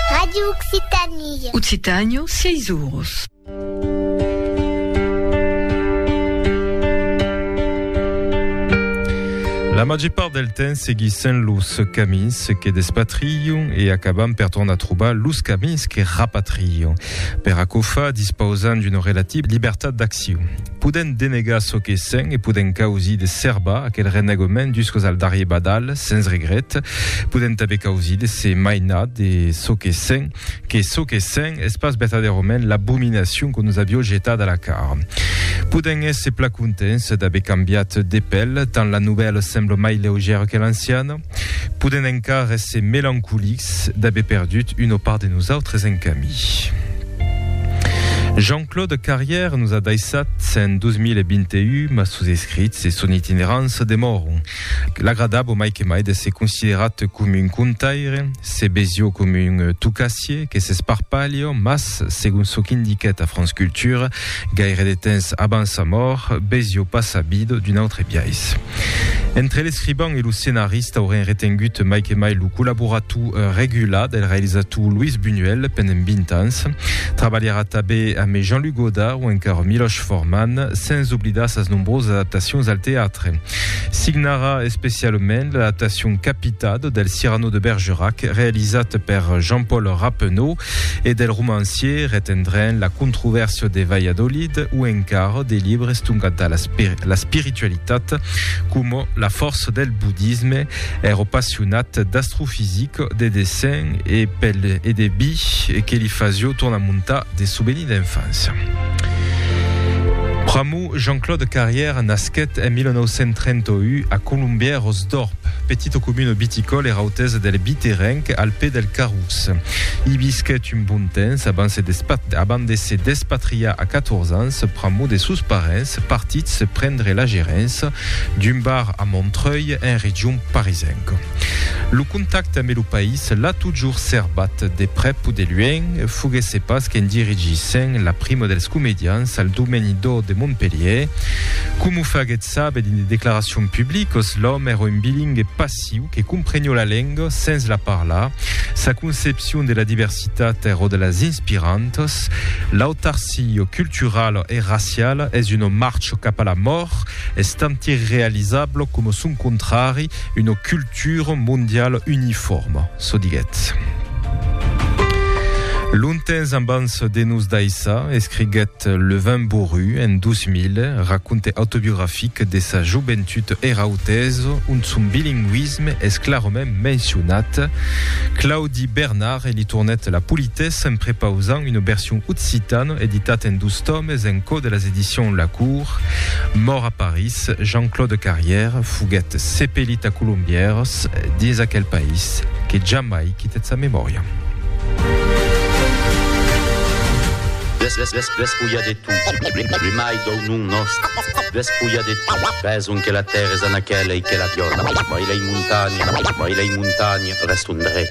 Radio Occitanie. Occitània, sièis oros. La màger part del temps seguissent los camins que despatrilhon e acabam per tornar trobar los camins que rapatrilhon. Per aquò fa, dispausam d'una relativa libertat d'accion. Podent denegar çò que sent e podent causir de serbar aquel renegament juscos al darrier badal, sens regret. Podent tanben causir de se mainar de çò que sent, que çò que sent es pas vertadèrament l'abominacion que nos avió jetat a la cara. Podent èsser pla contents d'aver cambiat de pèl, tant la novèla sembla mai leugèra que l'anciana. Podèm encara èsser melancolics d'aver perdut una part de nosautres en camí. Jean-Claude Carrière nos a daissat en 2021, mas sos escrits e son itinerança demòron. L'agradabo mai que mai d'èsser considerat coma un contaire, se besio coma un tocassier que s'esparpalha, mas, segon çò qu'indiquèt a France Culture, Gaire de temps abans sa mòrt, Bezio pas sabido d'un autre biais. Entre l'escriban e lo scenarista auren retengut mai que mai lo collaborator regular del realizator Luis Buñuel pendent 20 ans. Trabalharà tabé amé Jean-Luc Godard o encara Miloš Forman, sens oblidar sas nombrosas adaptacions al teatre. Signarà especialament l'adaptacion Capitado del Cyrano de Bergerac, realizat per Jean-Paul Rappeneau, e del romancier retendrem la controvèrsia de Valladolid o encara de libres tongat da la spiritualitat coma la fòrça del budisme ero passionat d'astrofisic de dessin e pel e de bi que li fasio tornar montar de souveni d'enfància Pr'amor Jean-Claude Carrière nasquèt en 1931 a Colombièros d'Or Petita comuna viticòla era autesa del Biterenc, al pè del Carrús. I visquèt un bon temps abans de se despatriar a 14 ans pr'amor de sos parents partits prendre la gerença d'un bar a Montreuil, en region parisenca. Lo contacte ambe lo país l'a totjorn serbat, de prèp o de luenh, foguèsse pas qu'en dirigissen la prima dels comedians al Domèni d'Or de Montpelhièr, coma o faguèt Sabe dins de declaracions publiques, l'òme èra un bilingue passiu que comprenió la lenga sens la parlar. Sa concepcion de la diversitat èra de las inspirantas. L'autarcia culturala e raciala es una marcha cap a la mòrt, estant irrealizabla coma son contrari, una cultura mondiala unifòrma, çò diguèt. Longtemps ambans de nos daissar, escriguèt. Eth Levin Boru, en 2000, raconte autobiografic de sa joventut era autèsa, ont son bilingüisme es clarament mencionat. Claudi Bernard li tornèt la politessa en prepausant una version occitana editat en dos tòmes en cò de las Edicions La Cour. Mòrt a París, Jean-Claude Carrière foguèt sepelit a Colombièrs, dins aquel país que jamai quitèt sa memòria. Despulha de tu, primai dau nom nòst, despulha de tu, beson que la tèrra es a naquela e que la viòla, mai lei montanha, mai lei montanha, restondrè.